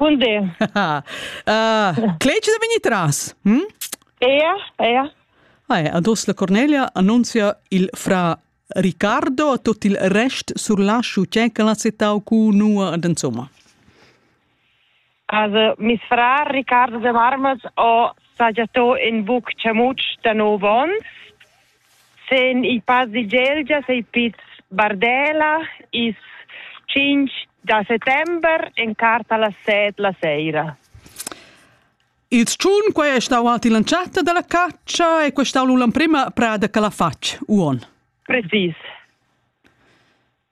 Bun di. uh, Cleci da vegnir tras? Hm? Ea, ea. Ah, ados la Cornelia annunzia il fra Riccardo a tot il rest sur lasciu c'è che l'ha citau cu nua ad insomma. Also, mis fra Riccardo de Marmels ho sagiato in buc cemuc da nov ons sen il pass di Gelgia sei piz Bardela is 5 da settember en carta las 7 la sera. Il tschun quai è stau alt in chatta dalla caccia e quei stau l'emprima prada che la fatg uon. Precis.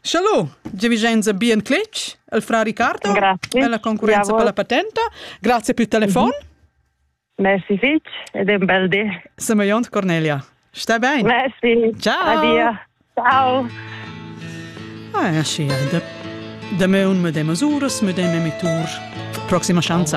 Shallo, Vicenza bien cletg, il fra Riccardo, Grazie. e la concurenza Bravo. per la patenta. Grazie per il telefon. Merci fitch ed un bel dì. Semajont Cornelia. Sta bene. Merci. Ciao. Addio. Ciao. Ah, ja, sì, de, de me un medem uras, medem emitur. Prossima chance.